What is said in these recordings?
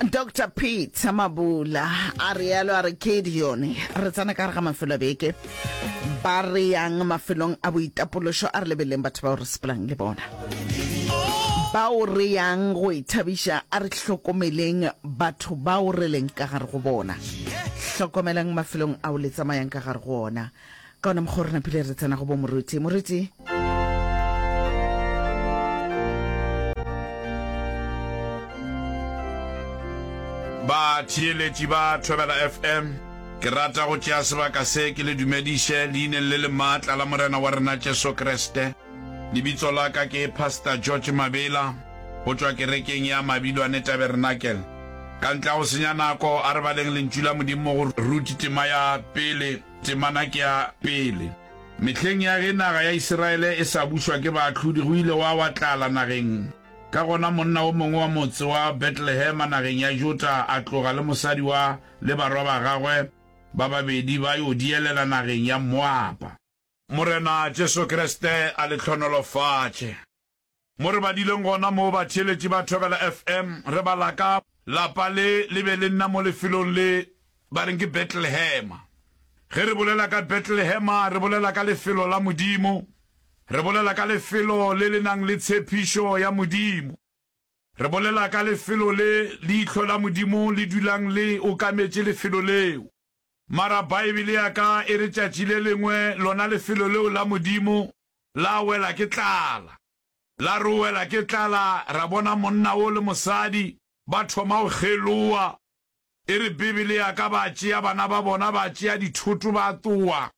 dr peter mabula a realo a re ke dione re tsena ka re ga mafelo a beke ba re yang mafelong a boitapološo a re lebeleng batho bao re sepelang le bona bao re yang go ithabiša a re hlokomeleng batho bao re leng ka gare go bona hlokomelang mafelong ao le tsamayang ka gare go ona Ka ona mokgwa re napile re tsena go bo Moruti. Moruti. Batheeletši ba Thobela FM, ke rata go tšea sebaka se ke le dumediše leineng le le maatla la Morena wa rena Jesu Kriste. Lebitso la ka ke Pastor George Mabela go tšwa kerekeng ya Mabilwane Tabernacle. Ka ntle ga go senya nako, a re baleng Lentšu la Modimo go Ruti tema ya pele. Temana ke ya pele. Mehleng ya ge naga ya Isiraele e sa bušwa ke baahlodi, go ile gwa wa tlala nageng. Ka gona monna o mongwe wa motse wa Betlehema nageng ya Juta a tloga le mosadi wa le barwa ba gagwe ba babedi ba yo dielela nageng ya Moaba. Morena Jesu Kriste a le hlonolofatše. Mo re badileng gona moo batheeletši ba Thobela FM, re bala ka. Lapa le le be le nna mo lefelong le ba reng ke Betlelehema. Ge re bolela ka Betlelehema, re bolela ka lefelo la Modimo. Re bolela ka lefelo le le nang le tshepišo ya Modimo. Re bolela ka lefelo le leihlo la Modimo le dulang le okametše lefelo leo. Mara Baebele ya ka e re tšatši le lengwe lona lefelo leo la Modimo la wela ke tlala. La re o wela ke tlala, ra bona monna wo le mosadi ba thoma go kgeloa. E re Bibele ya ka ba tšea bana ba bona, ba tšea dithoto ba tloa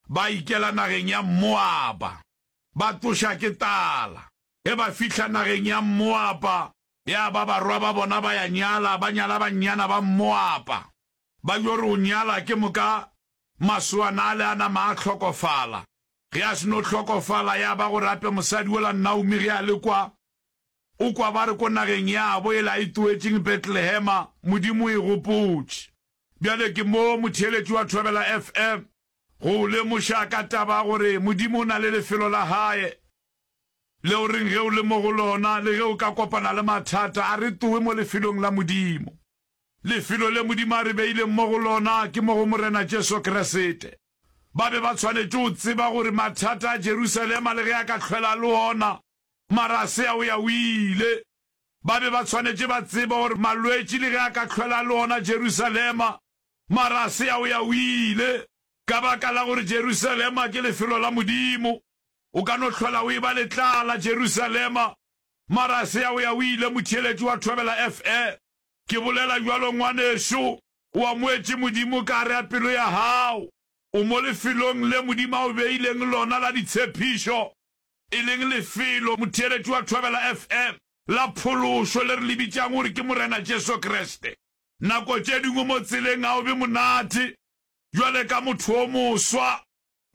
ba ikela nageng ya Moaba. Ba tloša ke tala. Ge ba fihla nageng ya Moaba, Ya ba barwa ba bona ba ya nyala, ba nyala bannyana ba Mmoapa. Ba yo re o nyala, ke moka masoana ale a nama a hlokofala. Ge a seno hlokofala, ya ba gore a pe mosadi ola Naomi ge a le kwa, o kwa ba re ko nageng yabo ele a itoetšeng Betlehema, Modimo o e gopotše. Bjale ke mo motheeletši wa Thobela FM go o lemoša ka taba ya gore Modimo o na le lefelo la Hae Le o reng ge o le mo go lona le ge o ka kopana le mathata? A re towe mo lefelong la Modimo. Lefelo le Modimo a re beileng mo go lona ke mo go Morena Jesu Kriste. Ba be ba tshwanetše go tseba gore mathata a Jerusalema le ge a ka hlwela le ona, mara a se a o ya o ile. Ba be ba tshwanetše ba tseba gore malwetši le ge a ka hlwela le ona Jerusalema, mara a se a o ya o ile, ka baka la gore Jerusalema ke lefelo la Modimo. O ka no hlola o eba letlaa la Jerusalema, mara a se ya o ya o ile, motheeletši wa thobela FE. Ke bolela bjalo, ngwanešu. O amoetše Modimo ka gare ga pelo ya gago. O mo lefelong le Modimo a o beileng lona la ditshepišo, e leng lefelo, motheeletši wa thobela FE, la phološo le re le bitšang gore ke Morena Jesu Kriste. Nako tše dingwe mo tseleng ga o be monate, bjale ka motho o moswa,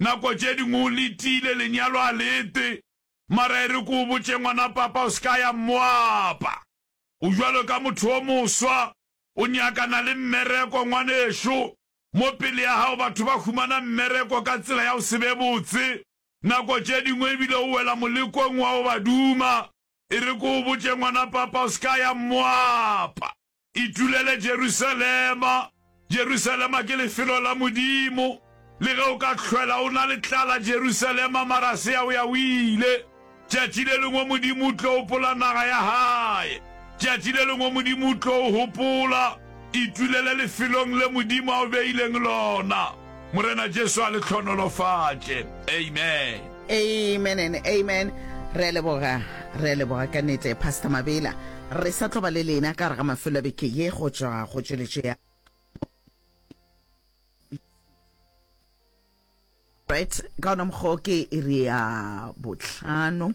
Nako tše dingwe o letile, lenyalo a le ete, mara e re ke o botše, ngwana papa, o se ka ya Moapa. O jwalo ka motho o moswa, o nyakana le mmereko, ngwanešu. Mo pele ya gago batho ba humana mmereko ka tsela ya go se be botse, nako tše dingwe e bile o wela molekong wa go ba duma. E re ke o botše, ngwana papa, o se ka ya Moapa. Itulele Jerusalema! Jerusalema ke lefelo la Modimo. Le ge o ka hlwela o na le tlala Jerusalema, mara se ya o ya o ile. Tšatši le lengwe Modimo o tlo hopola naga ya Hae. Tšatši le lengwe Modimo o tlo o hopola. Itulele lefelong le Modimo a o beileng lona. Morena Jesu a le tlhonolofatše. Amen. Amen and amen. Re a leboga, re a leboga ka nete Pastor Mabela. Re sa tlo ba le lena ka re ga mafelo a beke ye go tšwa go tšweletšo ya right ka ona mokgwa ke iri ya botlhano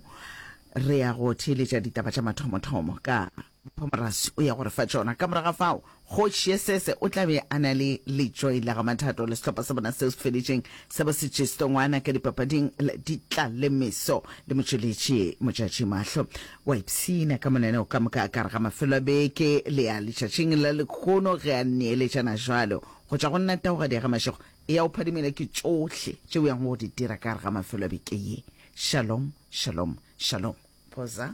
re ya go theeletša ditaba tša mathomothomo ka Mphomorasi o ya go re fa tšona. Ka morago ga fao, Kgoši Yesese o tla be a na le Letšoi la ga Mathato le sehlopha sa bona seo se feditšeng sa bo Setšisto Ngwana ka dipapading la Ditlalemeso le motšweletši Motšatši Mahlo. O a ipshina ka monaneo ka moka ka gare ga mafelo a beke le a letšatšing la lekgono ge a neeletšana bjalo, Go tšwa go nna Taugadi ya ga Mašego, eya o phadimile ke tšohle tše o yang go di dira ka gare ga mafelo a beke ye. Shalom, shalom, shalom. Phoza.